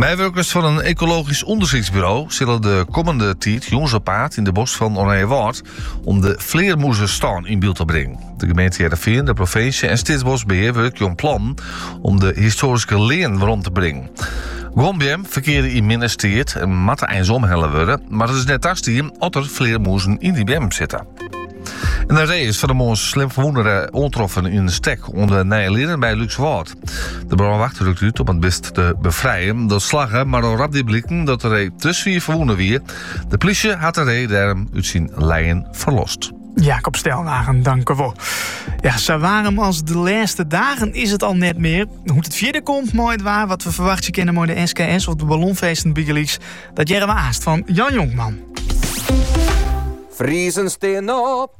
Meiwurkers fan in ekologysk ûndersyksburo sille de kommende tiid jûns op paad yn de bosk fan Oranjewâld om de flearmûzestân yn byld te bringen. De gemeente Hearrenfean, de provinsje en Steatsboskbehear wurkje oan plannen om de histoaryske lean werom te bringen. Guon beammen ferkeare yn minne steat en moatte eins omhelle wurde, mar it is net tastien at der flearmûzen yn dy beammen sitte. En in ree is fan 'e moarn slim ferwûne oantroffen yn in stek oan de Nije Leane by Lúkswâld. De brânwacht rukt út om it bist te befrijen. Dat slagge, mar al rap die bliken dat de ree te swier ferwûne wie. De plysje hat de ree dêrom út syn lijen ferlost. Jacob Stelwagen, tankewol. Ja, sa waarm as de lêste dagen is it al net mear. Hoe't it fierder komt mei it waar, wat we ferwachtsje kinne mei de SKS of de ballonfeesten bygelyks, dat hearre we aanst fan Jan Jonkman. Friezen stean op.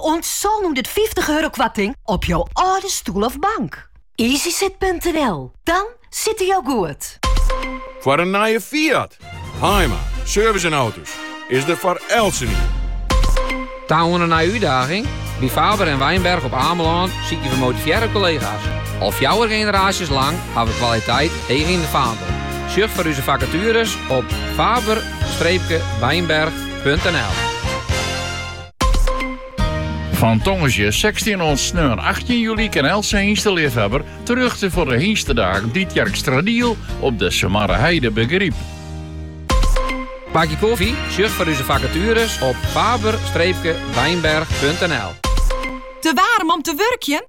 Oant sânhûndertfyftich euro koarting op jo âlde stoel of bank. Easysit.nl, dan sitte jo goed. Foar in nije Fiat, Haaima, service en auto's is der foar eltsenien. Ta oan in nije útdaging? By Faber en Wijnberg op Amelân sykje we motivearre kollega's. Al fjouwer generaasjes lang ha we kwaliteit heech yn de faandel. Sjoch foar úze fakatueres op faber-wijnberg.nl. Fan tongersdei 16 oant sneon 18 juli kin eltse hynsteleafhawwer terjochte foar de Hynstedagen Tytsjerksteradiel op de Sumarreheide by Garyp. Bakje koffie? Sjoch foar úze fakatueres op faber-wijnberg.nl. Te waarm om te wurkjen?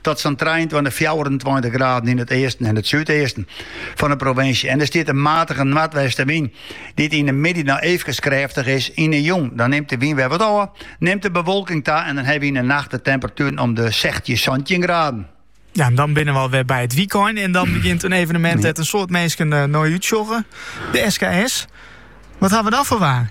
Tot sa'n trijeentweintich, fjouwerentweintich graden yn it easten en it súdeasten fan de provinsje. En der stiet in matige noardwestenwyn, dy't yn de middei noch eefkes krêftich is. Yn de jûn dan nimt de wyn wer wat ôf, nimt de bewolking ta en dan hawwe wy yn de nacht de temperatueren om de sechstjin, santjin graden. Ja, en dan binne we alwer by it wykein. En dan begjint in evenemint dêr't in soad minsken eh, nei útsjogge. De SKS. Wat ha we dan foar waar?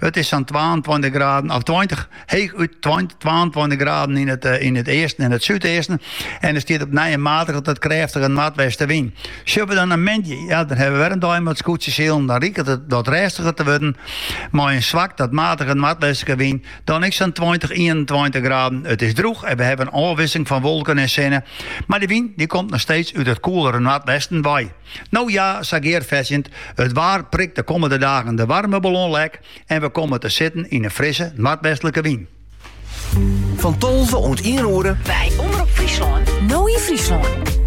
It is sa'n 22 graden, of 20, heechút 22 graden yn it, eh, yn it easten en it súdeasten. En der stiet op 'e nij in matige tot krêftige noardwestenwyn. Sjogge we dan nei moandei, ja, dan hawwe we wer in dei mei skûtsjesilen. Dan liket it wat rêstiger te wurden mei in swak tot matige noardwestlike wyn. Dan ek sa'n 20, 21 graden. It is droech en we hawwe in ôfwikseling fan wolken en sinne. Mar de wyn dy komt noch steeds út it koelere noardwesten wei. No ja, sa gearfetsjend, it waar prikt de kommende dagen de waarme ballon lek en we komme te sitten yn in frisse noardwestlike wyn. Fan tolve oant ien oere. By Omrop Fryslân, No yn Fryslân.